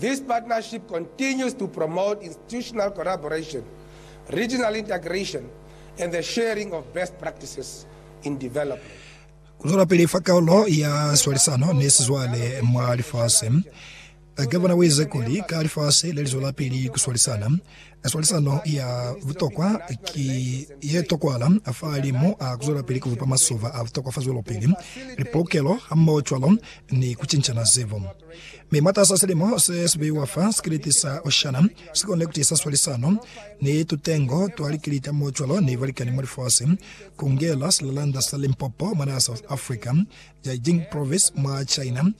This partnership continues to promote institutional collaboration, regional integration, and the sharing of best practices in development. Ku zwelapili fa kaulo ya swalisano ni sizwale mwa lifasi. Gavana u ize kuli, Ka lifasi le li zwelapili ku swalisana, Swalisano ya butokwa ki ye tokwala fahalimu a ku zwelapili ku bupa masoba a butokwa fa zwelopili, lipoukelo hamohocwalo ni ku cincana zebu. Mi mwatas'a silimo se si beiwa fa sikiliti sa Oceana, si konile ku tiisa swalisano ni tutengo twa likiliti hamohocwalo ni balikani mwa lifasi, ku ngela silalanda sa Limpopo mwanaa South Africa, Jiaxing Province mwa China,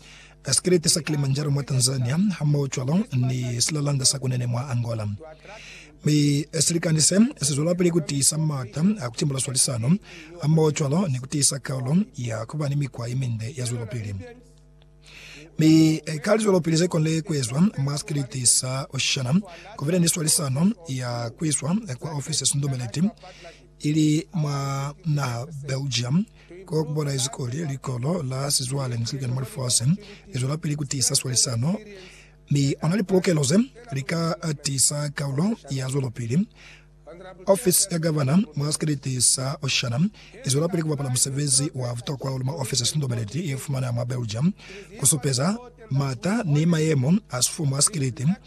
ka sikelete sa Kilimanjaro mwa Tanzania hamoho cwalo ni silalanda sa Kunene mwa Angola. Mi silikani se sizwelapili kutiisa m'ata a kutimbula swalisano hamoho cwalo ni kutiisa kaulo ya kuba ni mikwa yeminde ya zwelopili. Mi ka lizwelopili zekonile kuezwa mwa sikelete sa Oshana, kubile ni swalisano ya kuiswa kwa ofisi ya sindumeleti ili mwa naha Belgium, ko ku bonahezi kuli likolo la sizwale ni silikani mwa lifasi li zwelapili ku tiisa swalisano, mi ona lipolokelo ze li ka tiisa kaulo ya zwelopili. Ofisi ya Gavana mwa sikriti sa Oshana i zwelapili ku bapala musebezi wa butokwa hahulu mwa ofisi ya Sintobeleti ye fumana mwa Belgium, ku supeza m'ata ni mayemo a sifumu a sikriti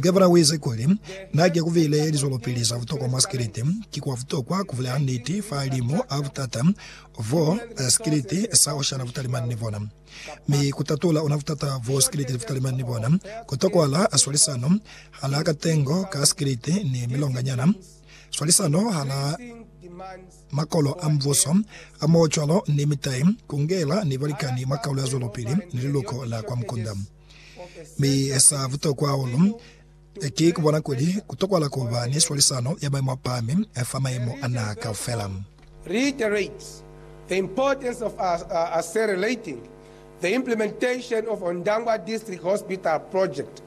Gavana wize kuli, Na ki kuvile lizwelopili za butokwa mwa sikiliti. Ki kwa butokwa kubulela niti fa limo a butata bo sikiliti sa oshana butalimani ni bona, mi kutatula ona butata bo sikiliti butalimani ni bona. Kutokwahala swalisano hala katengo ka sikiliti ni milonganyana, swalisano hala makolo a mubuso, hamoho cwalo ni mitai, kungela ni balikani mwa kaulo ya zwelopili ni liluko la kwa mukunda. Mi sa butokwa hahulu ki ku bona kuli ku tokwahala ku ba ni swalisano ya maimo a pahami fa maimo a naha kaufela. reiterates the importance of accelerating the implementation of Ondangwa District Hospital project,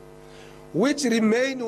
which remain one